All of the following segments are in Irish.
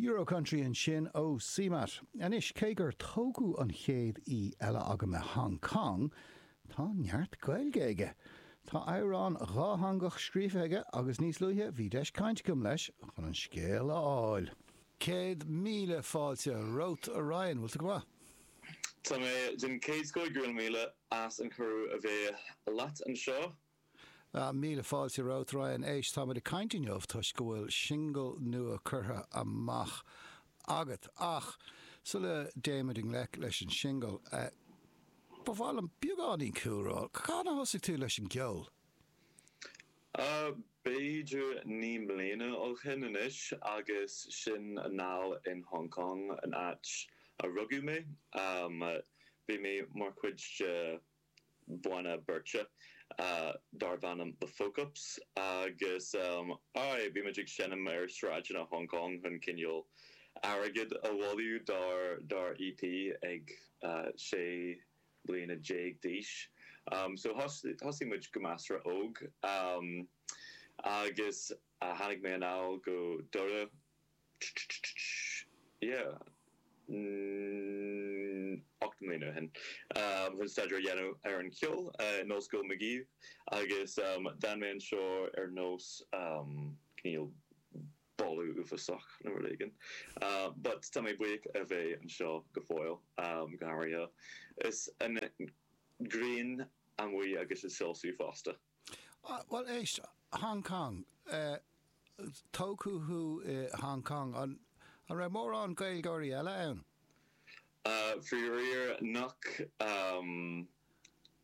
Euro-Country ansin ó CMAT. Anois, cé gur tógadh an chéad aoi eile agam i Hong Cong, tá neart Gaeilge aige. Tá amhrán dhátheangach scríofa aige agus níos luaithe bhí deis cainte agam leis chun an scéal a fháil. Céad míle fáilte romhat, a Ryan. Bhfuil tú go maith? Tá mé den chéad scoth, go raibh míle. As an cuireadh a bheith leat anseo. Míle fáilte romhat, Ryan. Éist, táimid ag caint inniu toisc go bhfuil singil nua curtha amach agat. Ach sula dtéimid i ngleic leis an singil, ba mhaith liom beagáinín cúlra. Cathain a thosaigh tú leis an gceol? B'fhéidir naoi mbliana ó shin anois agus sin anall in Hong Cong, an áit a rugadh mé. Bhí mé mar chuid de bhanna beirte darbh ainm The Folkups agus, aye, bhí muid ag seinm ar sráideanna Hong Cong chun cineál airgead a bhailiú dár EP ag sé. bliana déag d'aois. So, thosaigh muid go measartha óg agus tháinig mé anall go Doire, yeah, ocht mbliana ó shin, chun staidéar a dhéanamh ar an cheol in Ollscoil Magee agus d'fhan mé anseo ar nós, um, cineál, boladh uafásach nó rud éigin. But tá mé buíoch a bheith anseo go fóill, go háirithe is an ghrian amuigh agus ag soilsiú fosta. Bhuel, éist, Hong Cong, tógadh thú i Hong Cong, an raibh mórán Gaeilgeoirí eile ann? Faraor nach.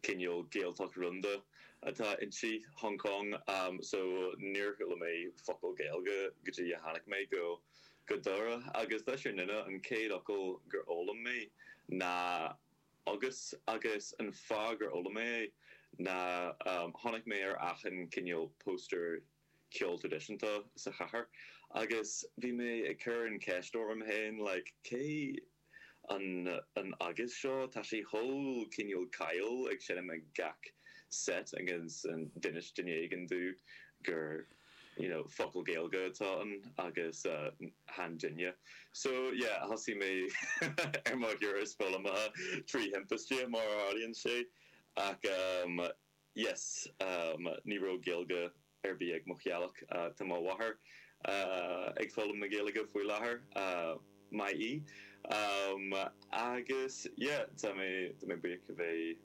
cineál Gaeltacht rúnda atá inti, Hong Cong, so níor chuala mé focal Gaeilge go dtí a tháinig mé go go Doire agus leis an fhírinne an chéad fhocal gur fhoghlaim mé ná agus agus an fáth gur fhoghlaim mé é ná chonaic mé ar achan cineál póstaer ceol traidisiúnta sa chathair agus bhí mé ag cur an cheist orm féin like cé an an agus seo tá sé chomh cineál cool ag seinm ag gach set agus d'inis duine éigin domh gur you know focal Gaeilge atá ann agus chan duine so yeah thosaigh mé ar mo thuras foghlamtha trí thimpiste mar a tharlaíonn sé ach um yes Ní raibh Gaeilge ar bith ag mo theaghlach Tá mo mháthair ag foghlaim na Gaeilge faoi láthair Maith í Agus yeah tá mé tá mé buíoch a bheith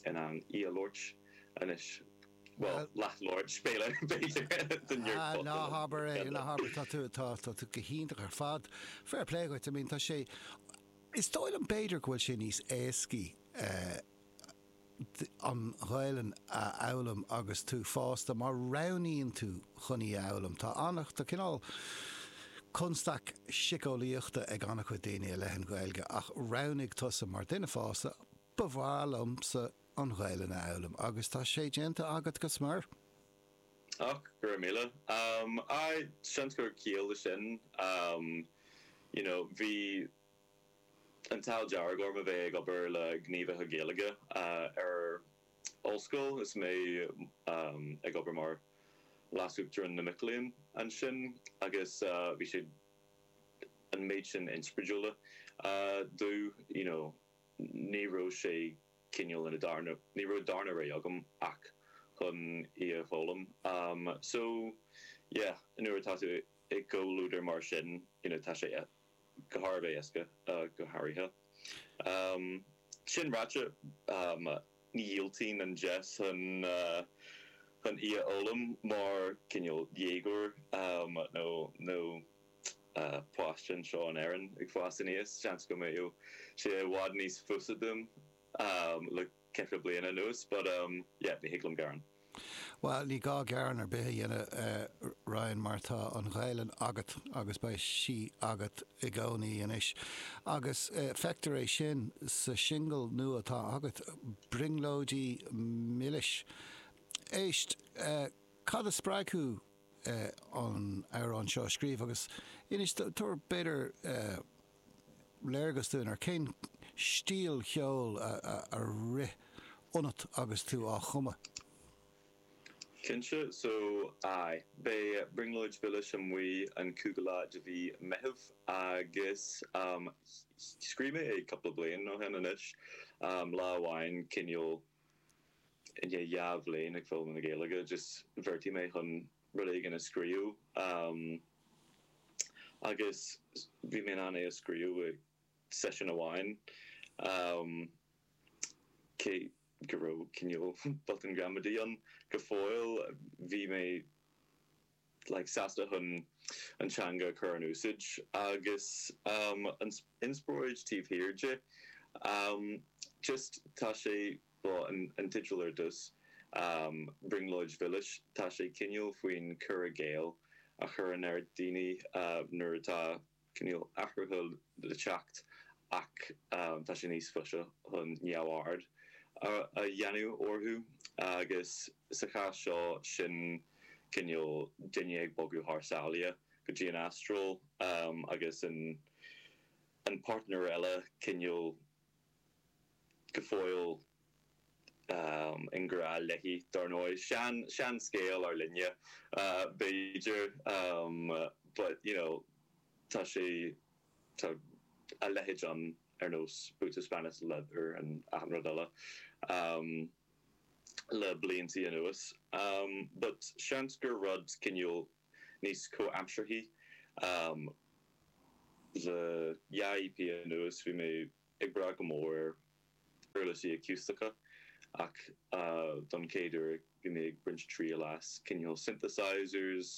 in ann í a labhairt anois Bhuel, leath labhairt, is féidir, b'fhéidir The nerd Ah, ná fuckin' habair é, ná habair, tá tú, tá tú go hiontach ar fad Fair play dhuit, I mean tá sé, is dóigh liom b'fhéidir go bhfuil sé níos éascaí eh, an Ghaelainn a fhoghlaim agus tú fásta, má roghnaíonn tú chun í a fhoghlaim. Tá ana, tá cineál constaic siceolaíochta ag ana chuid daoine i leith an Ghaeilge ach roghnaigh tusa mar duine fásta, ba mhaith liomsa an Ghaelainn a fhoghlaim agus tá sé déanta agat go smior. Och, go raibh míle. Aye, seans go bhfuil ciall le sin. You know, bhí. an t-ádh dearg orm a bheith ag obair le gníomhaithe Gaeilge ar ollscoil is mé ag obair mar leasuachtarán na mic léinn ansin agus bhí siad an méid sin inspioráidiúla domh you know ní raibh sé cineál ina darna, ní raibh darna rogha agam ach chun í a fhoghlaim so yeah nuair atá tú i gcomhluadar mar sin you know tá sé. an-éasca go háirithe. Sin ráite, dhiúltaigh mé an deis chun í a fhoghlaim mar chineál dhéagóir nó páiste anseo in Éirinn ag fás aníos, seans go mbeadh sé i bhfad níos fusa dom le ceithre bliana anuas but um yeah ní thig liom gearán. Bhuel, ní gá gearán ar bith a dhéanamh, a Ryan, mar tá an Ghaelainn agat agus beidh sí agat i gcónaí anois. Agus feictear é sin sa singil nua atá agat, 'Brionglóidí Milis'. Éist, cad a spreag thú an amhrán seo a scríobh agus inis, tabhair b'fhéidir, léargas dúinn ar cén stíl cheoil a rith ionat agus tú á chumadh. Cinnte, so aye. Beidh Brionglóidí Milis amuigh an cúigiú lá de mhí Meitheamh agus scríobh mé é cúpla bliain ó shin anois, lá amháin cineál i ndiaidh dhá bhliain ag foghlaim na Gaeilge just bheartaigh mé chun rud éigin a scríobh agus bhí mé in ann é a scríobh i seisiún amháin cé go raibh cineál botúin ghramadaí ann go fóill, bhí mé like sásta chun an teanga a chur in úsáid agus an inspioráid taobh thiar di just tá sé. Bhí an teideal ar dtús, Brionglóid Mhilis, tá sé cineál faoin cur i gcéill a chur ann ar dhaoine nuair atá cineál athruithe le teacht ach tá sé níos fusa chun neamhaird a dhéanamh orthu agus sa chás seo sin cineál duine ag bogadh thar sáile go dtí an Astráil agus an páirtnéir eile cineál go fóill i ngrá léi, dar ndóigh. Sean, sean scéal ár linne, um, b'fhéidir, but, you know, tá sé, tá a leithéid ann ar nós Boots of Spanish Leather and achan rud eile um le blianta anuas. But seans gur rud cineál níos comhaimsearthaí. Le dhá EP anuas bhí mé ag brath go mór ar uirlisí aciústacha ach don chéad uair bhí mé ag baint triail as cineál synthesizers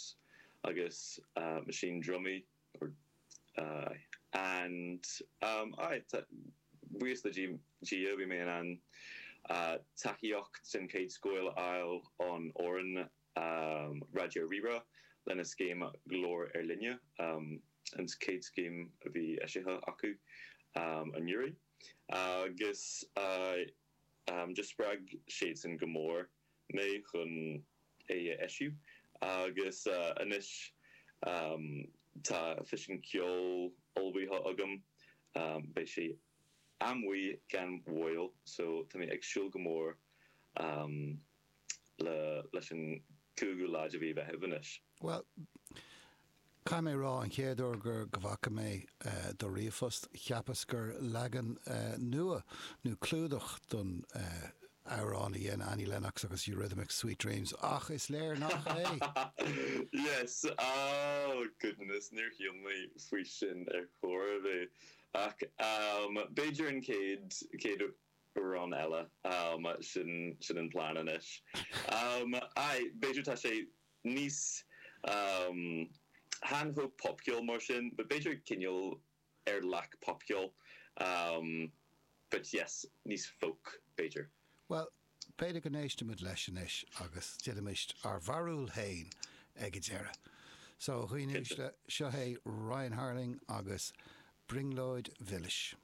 agus machine drumaí or and aye a bhuí le Dia bhí mé in ann tacaíocht den chéad scoth a fháil ón fhoireann um Raidió Rí-Rá lena scéim Glór Ár Linne, um an chéad scéim a bhí eisithe acu um anuraidh, agus um just spreag siadsan go mór mé chun é a eisiú agus anois um tá físeán ceoil ullmhaithe agam um beidh sé amuigh gan mhoill so tá mé ag súil go mór um. leis an gcúigiú lá de mhí Mheithimh anois. Bhuel, caithfidh mé a rá, an chéad uair gur go bhfaca mé do ríomhphost, cheapas gur leagan nua nó clúdach don amhrán a dhein Annie Lennox agus Eurythmics, Sweet Dreams, ach is léir nach é! Yes! Oh, goodness, níor smaoinigh mé faoi sin ar chor ar bith. Ach b'fhéidir an chéad, chéad. amhrán eile, ámh, sin sin an plean anois. Ámh, aye, b'fhéidir tá sé níos, ámh, chan chomh popcheol mar sin, but b'fhéidir cineál ar leac popcheoil, ámh, but yes, níos folk, b'fhéidir. Bhuel, b'fhéidir go n-éistfimid leis anois agus déanfaimid ár mbarúil fhéin ag a deireadh. So, a dhaoine uaisle, seo é Ryan Harling agus Brionglóid Mhilis.